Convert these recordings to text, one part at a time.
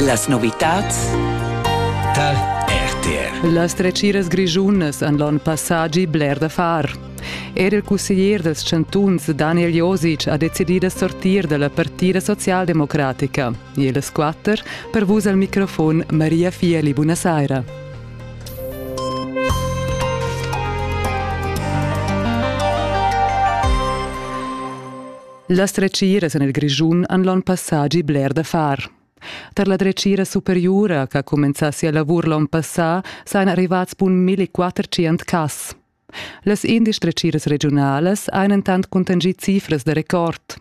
Las novitads Tal RTR. Las dretgiras grischunas han l'onn passà gì bler da far. Er il cusseglier dals chantuns Daniel Josic ha decidì da sortir da la partida socialdemocratica. E las quatter per vus al microfon Maria Fieli, buonasera. Las dretgiras en il Grischun han l'onn passà gì bler da far. Tar la dretgira superiura ch'ha cumenzà sia lavur l'onn passà sajan arrivads bun 1400 cas. Las indesch dretgiras regiunalas han entant cuntanschì cifras da record.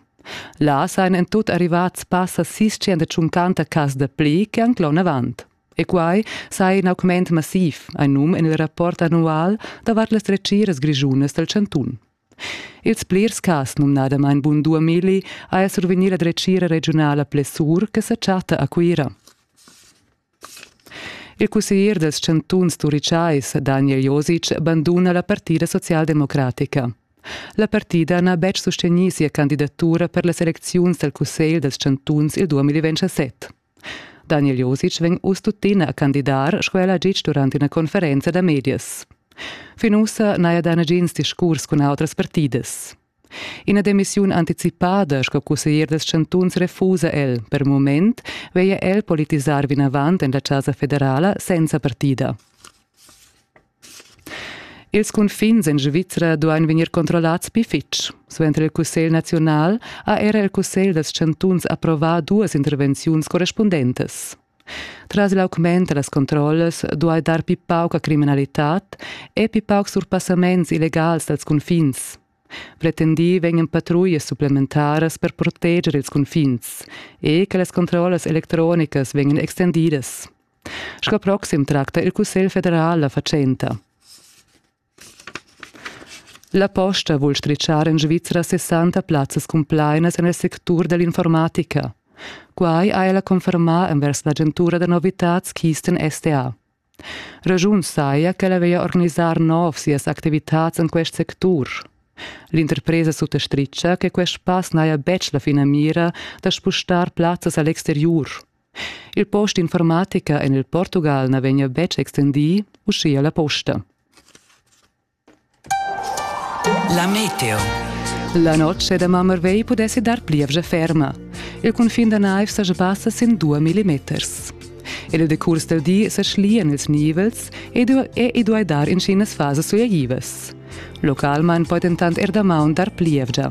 Là sajan en tut arrivads passa 650 cas da pli che anc l'onn avant. E quai saja in augment massiv, ein num en il rapport annual davart las dretgiras grischunas dal chantun. Ils plirs cas, numnadamain Bun Duameli, haja survegnì la dretgira regiunala Plessur che sa chatta a Cuira. Il cusseglier dals chantuns turichais Daniel Josic banduna la partida socialdemocratica. La partida n'ha betg sustegnì sia candidatura per las elecziuns dal cussegl dals chantuns il 2017. Daniel Josic vegn uss tuttina a candidar sco el ha ditg durant ina conferenza da medias. Fin ussa n'haja dà nagins discurs cun autras partidas. Ina demissiun anticipada sco cusseglier dals chantuns refusa el. Per mument veglia el politisar vinavant en la Chasa federala senza partida. Ils cunfins en Svizra duain vegnir controllads pli fitg. Suenter il Cussegl naziunal ha era il Cussegl dals chantuns approvà duas intervenziuns correspundentas. Tras l'augment da las controllas duai dar pli pauca criminalitad e pli paucs surpassaments illegals dals cunfins. Pretendì vegnan patruglias supplementaras per proteger ils cunfins e che las controllas electronicas vegnan extendidas. Sco proxim tracta il Cussegl federal la fatschenta. La posta vul stritschar en Svizra 60 plazzas cumplainas en il sectur dell'informatica. Quai ha ella confermà envers l'agentura da novitads Kisten STA. Ragiun saja ch'ella veglia organisar nov sias activitads en quest sectur. L'interpresa suttastritga che quest pass n'haja betg la finamira da spustar plazzas a l'exteriur. Il post d'informatica en il Portugal na vegnia betg extendì, uschia la posta. La meteo. La noce da Mammervey pudessi dar plievgia ferma. Il cunfin da naiv saja passa sin 2 millimeters. Il decurs del di sa schlian ils nivels e e i duai dar incenas fasas suiaivas. Localmain poi dentant er damaun dar plievgia.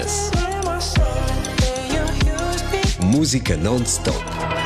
Musica non-stop